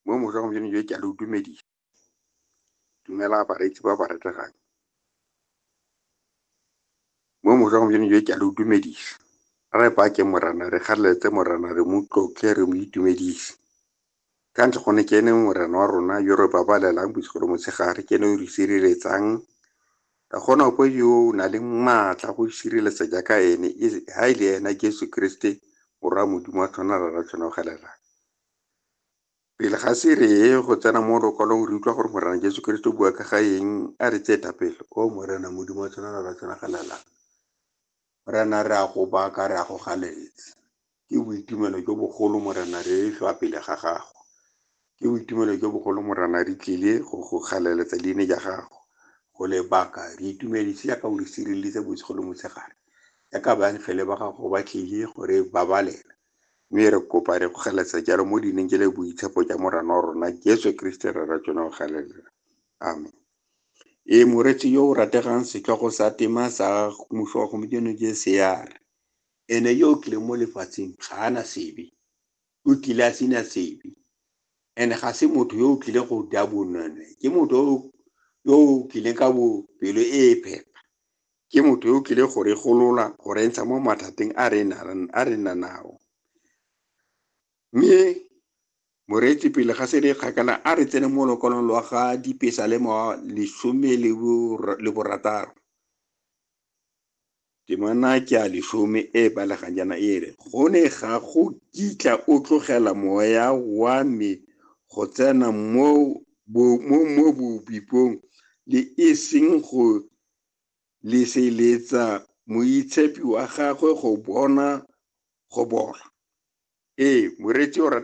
mo mosa gompieno jo ke a le dumedisa dumela bareetsi ba ba retegang mo mosa gompieno jo ke a le dumedisa re bake morana re kgaleletse morana re mo tlotle re mo itumedise ka ntlha gone ke ene morena wa rona yo re babalelang bosigo le motshegare ke ene o re sireletsang Ka gona ko yo o na le maatla go isireletsa jaaka ene, e ha e le ena Jesu Kriste, Morwa Modimo a tshwana rara tshwanogelelang. Pele ga se re ye go tsena mo lokwalong re utlwa gore Morena Jesu Kriste o bua ka ga eng, a re tsee thapelo, O Morena Modimo a tshwana rara tshwanogelelang. Morena, re a go baka, re a go ganetsa. Ke boitumelo jo bogolo, Morena, re hlwa pele ga Gago. Ke boitumelo jo bogolo, Morena, re tlile go go galeletsa leine ja Gago, go le baka. Re itumedise jaaka o re sireleditse bosigo le motshegare, jaaka baengele ba Gago ba tlile go re babalela. Mme re kopa, re go galeletsa jalo mo leineng je le boitshepo ja Morena wa rona Jesu Keresete Rre wa tsona, o galelela. Amen. e moreetsi yo o rategang setlhogo sa tema sa mmuso wa gompieno je sear ene yo o tlileng mo lefatsheng ga ana sebe o tlile a sena sebe and ga se motho yo o tlile go ja bonone ke motho yo o tlileng ka bopelo e e phepa ke motho yo o tlile go re golola go re ntsha mo mathateng a re nang a re nanao Mme moreetsi pele ga se re kgakala a re tsene mo lokolong lwa ga dipesa le mo lesome le borataro temana ke a lesome e balegang jaana e re go ne ga go kitla o tlogela moya wa me go tsena mo bobipong le e seng go leseletsa moitshepi wa gagwe go bona go bola. Ee, moreetsi o rata.